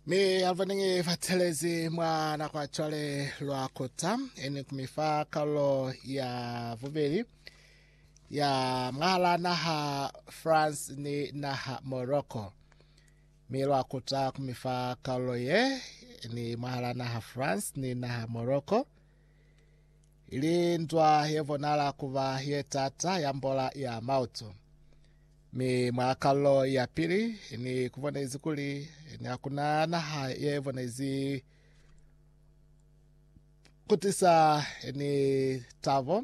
ni alvanenge bathelezi mwa nako ya cwale lwa kota ene kumifa karolo ya bubeli ya mwahala naha france ni naha morocco mi lwa kota kumifa karolo ye ni mwahala naha france ni naha morocco ili nzwa ye bonala kuba ye tata ya mbola ya mautu. Mi mwa kalulo ya pili ni kubonezi kuli ni hakuna naha ye bonezi kutisa ni tabo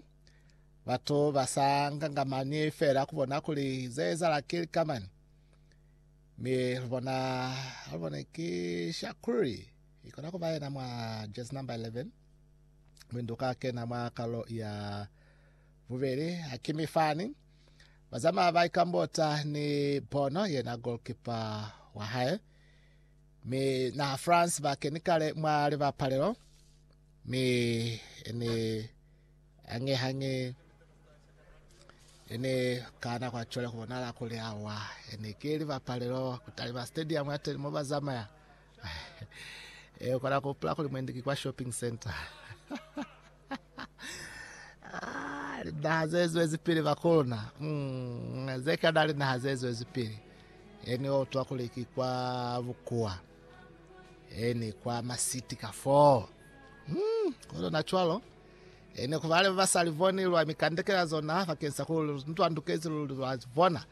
batu ba sa ngangamani fela kubona kuli ze ezala ki likamani mi lubona lubone ki shakuli Ikona kuba yena mwa jersey number 11. Mlindu ka kena mwa kalo ya bubeli Hakimi Fani. Bazama ba ikambota ni Bono yena goalkeeper wa hae. Mi na France ba keni kale mwa libapalelo. Mi ni hange hange ene kana kwa chole kubonala kuli awa ene ke libapalelo kutalima stadium ya teni mo bazamaya Ee, u kona ku hupula kuli mwendi ki kwa shopping center. Ah, linaha ze zwezipili bakuluna. Mm, ze kana linaha ze zwezipili. Eni o utwa kuli ki kwa bukua. Eni kwa masiti ka foo. Mm, kono na cwalo. Eni ku bale ba sa livoni lwa mikandekela zona bakeng sa ku ntwandukezi luli lwa bona.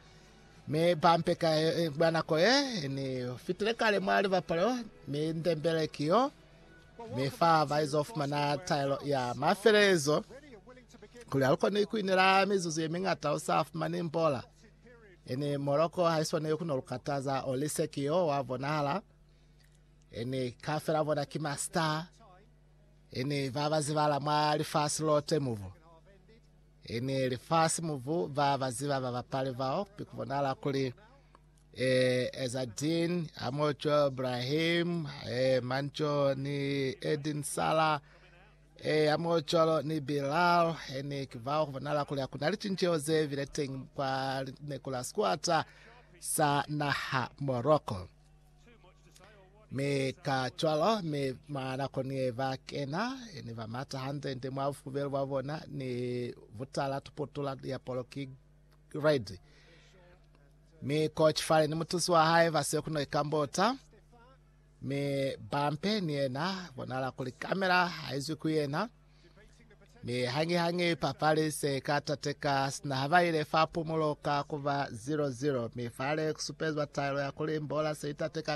Mi pampe ka mwa nako ye ni fitile kale mwa libapalo, mi ndembele ki yo mi fa baizo fumana taelo ya mafelelezo kuli ha lu koni ku inela mizuzu ye miñata u sa fumani mbola. Ini moloko ha iswani yo ku no lu kataza, o lise ki yo wa bonahala. Ini kafela bona ki ma star, ini ba ba zibala mwa lifasi lote mubu. E ni lifasi mubu ba ba ziba ba bapali bao bi ku bonala kuli e Ezadin, Amocho, Brahim, e Mancho ni Edin Sala, e Amocholo ni Bilal, e ni ki bao ku bonala kuli hakuna licinceho ze bile teñi kwa lineko la sikuata sa naha Morocco. mi ka cwalo mi mwa nako ni ba kena ni ba mata hantle nte mwa bufubelo bwa bona ni butala tuputula ya poloki red mi ko chifale ni mutusi wa hae ba se kuno ikambota mi bampe ni yena bonala kuli kamera haizwi ku yena Mi hangi-hangi papali se ka tateka sina ha ba ile fa pumulo ka kuba 0-0, mi fale kusupezwa taelo ya kuli mbola se itateka